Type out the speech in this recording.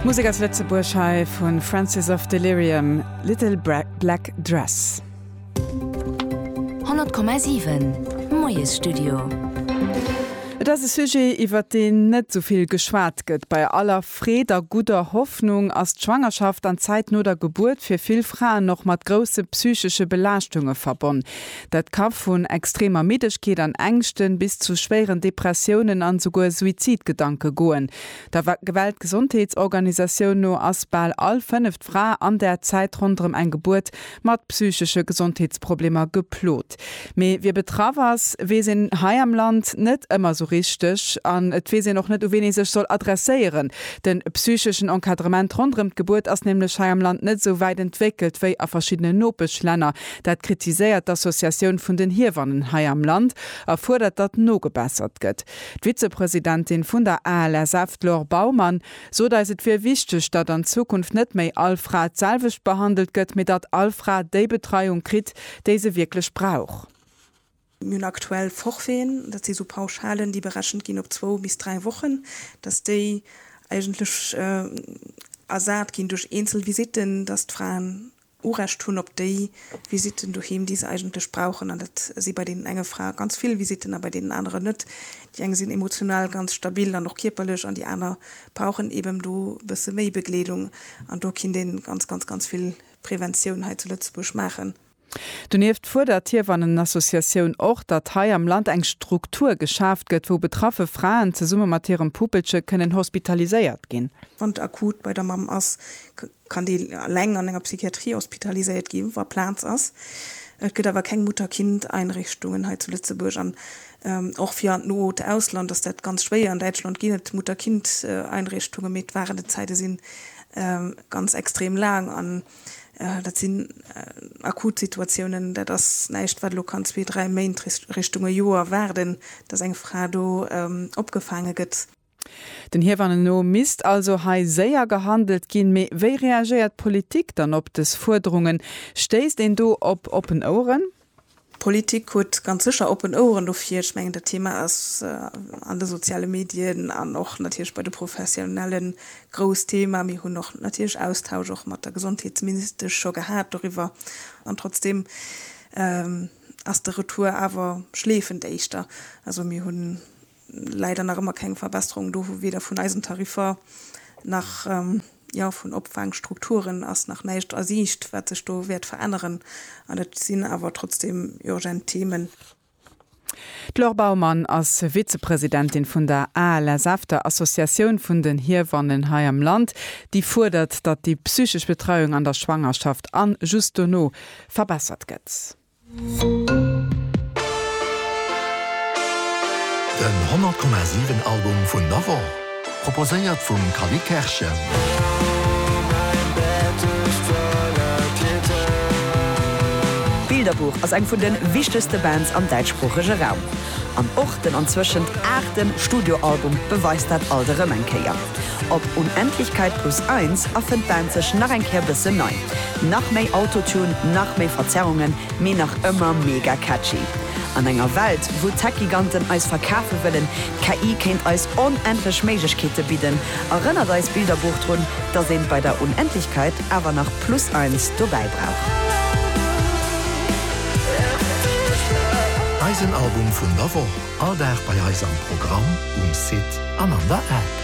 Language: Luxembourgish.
Musek aus Lëtzebuerg hei vu Francis of Delirium, Little Black Dress. 100,7 Moiesstudio. Et ass e Sujet, iwwert deen net esou vill geschwat gëtt. Bei aller Freed a gudder Hoffnung ass d'Schwangerschaft an d'Zäit no der Gebuert fir vill Fraen och mat grousse psychesche Belaaschtunge verbonn. Dat ka vun extremer Middegkeet an Ängschten bis zu schwéieren Depressiounen an esouguer Suizidgedanke goen. Der Weltgesondheetsorganisatioun no ass bal all fënneft Fra an der Zäit ronderëm eng Gebuert mat psychesche Gesondheetsproblemer geplot. Mee wie betraff ass, weess een hei am Land net ëmmer esou richteg an et weess een och net, u ween ee sech soll adresséieren. De psycheschen Encadrement ronderëm d'Gebuert ass nämlech hei am Land net esou wäit entwéckelt wéi a verschiddenen Nopeschlänner, Dat kritiséiert d'Associatioun vun den Hiewannen hei am Land a fuerdert, datt nogebessert gëtt. D'Vizepresidentin vun der ALSF, d'Laure Baumann, sot eis, et wier wichteg, datt an Zukunft net méi all Fra d'selwecht behandelt gëtt, mee datt all Fra déi Betreiung kritt, déi se wierklech brauch. Mir hunn aktuell Forfaiten, dat si sou Pauschalen, déi berechent ginn op zwou bis dräi Wochen, datt déi eigentlech ersat ginn duerch eenzel Visitten, datt d'Fraen Urecht hunn op déi Visitten doheem, déi se eigentlech brauchen. An dat si bei deenen enge Frae ganz vill Visitten a bei deenen aneren net. Déi eng sinn emotional ganz stabil an och kierperlech an déi aner brauchen eben do e bësse méi Begleedung. An do kinnt ee ganz, ganz, ganz vill Preventioun hei zu Lëtzebuerg maachen. Donieft fuerdert d'Hiewannenassociatioun och, datt hei am Land eng Struktur geschaaft gëtt, wou betraffe Fraen zesumme mat hirem Puppelche kënnen hospitaliséiert ginn. Wann d'Akut bei der Mamm ass, kann déi eleng an enger Psychiatrie hospitaliséiert gi wa Plaz ass. Et gëtt awer keng Mutter-Kind-Einrichtungen hei zu Lëtzebuerg an och fir an d'noot Ausland ass dat ganz schwéier. An Däitschland ginn et Mutter-Kind-Einrichtungen, mee d'Warenenzäite si ganz extrem laang. Dat sinn akut Situatiounen. Dat ass näischt, wat elo kann zwee, dräi Méint, Richtung e Joer waarden, dass eng Fra do opgefaange gëtt. Den Hiewanne no misst also hei séier gehandelt ginn. Mee wéi reagéiert d'Politik dann op des Fuerderungen? Stéisst een do op oppen Oueren? D'Politik huet ganz sécher oppen Oueren dofir. Ech mengen dat Thema ass an de soziale Medien an och natierlech bei de Professionellen grouss Thema. Mir hunn och natierlech Austausch och mat der Gesondheetsministesch scho gehat doriwwer. An trotzdeem ass de Retour awer schleefend éischter. Also mir hunn Leider nach ëmmer keng Verbesserung do, weder vun eisen Tariffer nach, jo, vun Opfaangstrukturen ass nach näischt a Siicht, wat sech do wäert veränneren. An et sinn awer trotzdem urgent Themen. D'Laure Baumann ass Vizepresidentin vun der ALSF, der Associatioun vun den Hiewannen hei am Land, déi fuerdert, datt déi psychesch Betreiung an der Schwangerschaft an just dono verbessert gëtt. Den 100 Komma 7 Album vun der Woch, proposéiert vum Cally Kerschen. Bilderbuch ass eng vun de wichtegste Bands am däitschsproochege Raum. An och den anzwëschent aachte Studioalbum beweist dat alt erëm eng Kéier. Op Unendlichkeit plus eins erfënnt d'Band sech nach eng Kéier bëssen nei. Nach méi Autotune, nach méi Verzerrungen, mee nach ëmmer mega catchy. An enger Welt, wou d'Tech-Giganten eis verkafe wëllen, d'KI kéint eis onendlech Méiglechkeete bidden, erënnert eis Bilderbuch drun, dass een bei der Unendlichkeit awer nach plus eins dobäi brauch. Eisen Album vun der Woch, all Dag bei eis am Programm, um Site an an der App.